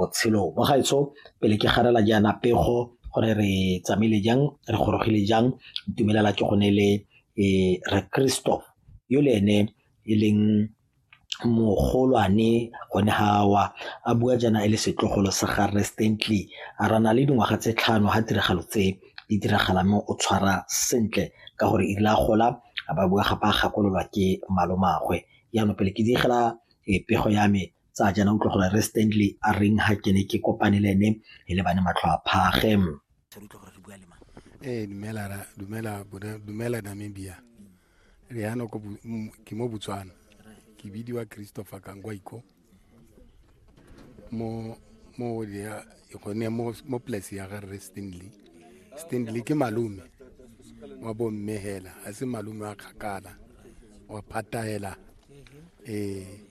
botshelo mo gaetsho pele ke garela jaana pego gore re tsamaile jang re gorogile jang ntumelela ke gone le e re kristo yo le ene e leng mogolwane gone gawa a bua jaana e le setlogolo sa ga restently a rana le dingwaga tse tlhano ga tiragalo tse di diragala mo o tshwara sentle ka gore e rile a gola a ba bua gape a gakololwa ke malomagwe jaanong pele ke digela e pego ya me tsa jana utlwa gore re stanley a reng ha ke ne ke kopane le ene e lebane matlho a phage ee dumela dumela dumela namibia re yana ko ke mo botswana ke bidiwa christopher kangwaiko mo mo ya gone mo mo place ya ga re stanley stanley ke malume wa bomme hela a se malume wa kgakala wa phatahela ee eh.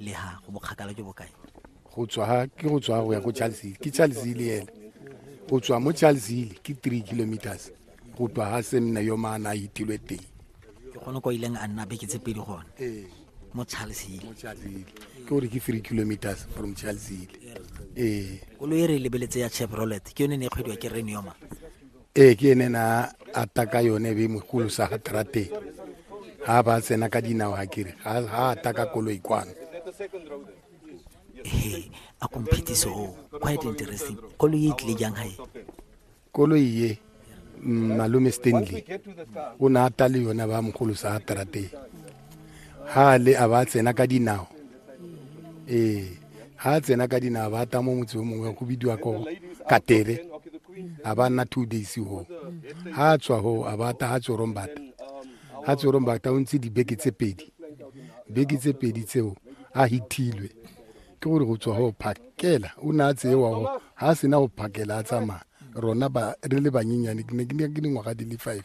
le ha go bokgakala jo bokae go tswa ke go tswa go ya ko charlesile ke charlesile ena go tswa mo charlesile ke three kilometers go tswa ga se nna yo maana a itilwe teng ke gone ko ileng a nna beke tse pedi gone ee. mo charlesile ke gore ke three kilometers from charlesile ee koloi e re lebeletse ya chevrolet ke yone ne e kgwediwa ke renioma ee ke ene na ata ka yone be mogolo sa ga trateng ga ba tsena ka dinao ga kere ga ata ka koloi kwano ee a komphetiso o quite interesting koloi e tlile jang gae koloi ye mm, malome stanley o ne ata le yone ba mogolo sa ga trateng ga le a ba tsena ka dinao ee ha a tsena ka dina ba ta mo motse o mongwe go bidiwa ko katere a ba nna two days ho ha a tswa ho a ba ta ha tsorong bata ha tsorong bata o ntse dibeke tse pedi beke tse pedi tseo a hithilwe ke gore go tswa go phakela o ne a tseewa go ga a sena go phakela a tsamaya rona re le banyenyane ke ne ke dingwaga di le five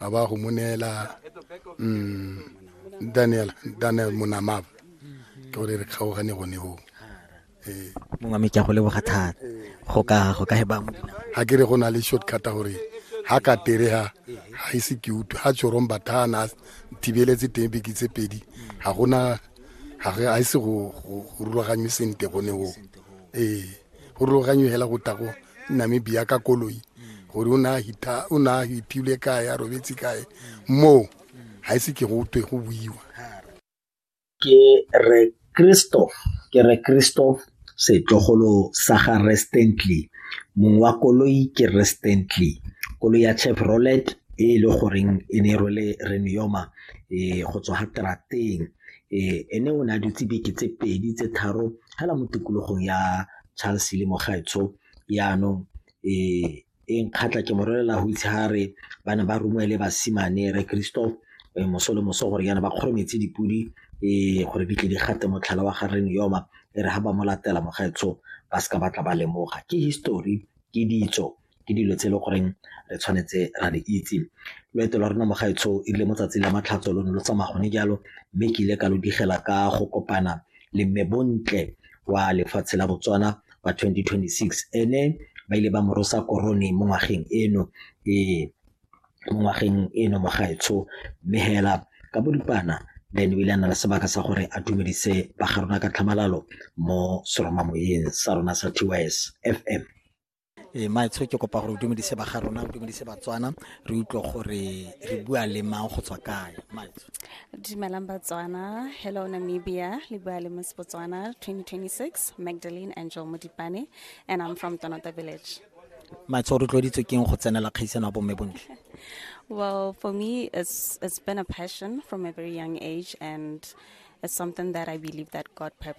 a ba go mo neela mm, daniel daniel monamaba ke gore re kgaogane gone go ee mongwe me ke a go leboga thata go ka go ka heba mo dinao ga ke re go na le shortcut a gore ga ka terega ga ise ke utlwe ga tsorong bathana thibeletse teng beke tse pedi ga gona ga ise go rulaganywe sente gone go ee go ruloganye hela go tla go namibia ka koloi gore o ne a hiphile kae a robetse kae moo ga ise ke go twe go buiwa ke re kristo ke re kristo setlogolo sa ga restently mong wa koloi ke restently koloi ya chevrolet e e le goreng e ne e rwele renioma e go tswa ga trateng Ee, ene o ne a dutse beke tse pedi tse tharo fela mo tikologong ya Charles le Mogaetsho yaanong ee e nkgatlha ke mo rolela go itse ga re ba ne ba romele basimane re Christoph eh, moso le moso gore yana ba kgorometse dipodi ee gore di tle di gate motlhala wa gareng yoma e re ga ba mo latela Mogaetsho ba seka batla ba lemoga ke history ke ditso ke dilo tse e le goreng re tshwanetse ra di itse. Loeto lwa rona mo gaetsho e rile mo tsatsi la Matlhatso lo ne lo tsamaya gone jalo mme ke ile ka lo digela ka go kopana le mme Bontle wa lefatshe la Botswana wa 2026 ene ba ile ba morosa korone mo ngwageng eno ee mo ngwageng eno mo gaetsho mme hela ka boripana then o ile a na le sebaka sa gore a dumedise ba ga rona ka tlhamalalo mo seromamoyeng sa rona sa TYS FM. e maetsho ke kopa gore o dumedise ba ga rona o dumedise batswana re utlwe gore re bua le mang go tswa kae maetsho dumelang batswana hello namibia le bua le miss botswana 2026 magdalene angel modipane and i'm from tonota village maetsho o rotloeditswe keng go tsenela kgaisano ya bomme bontle well for me it's, it's been a passion from a very young age and it's something that i believe that god purpose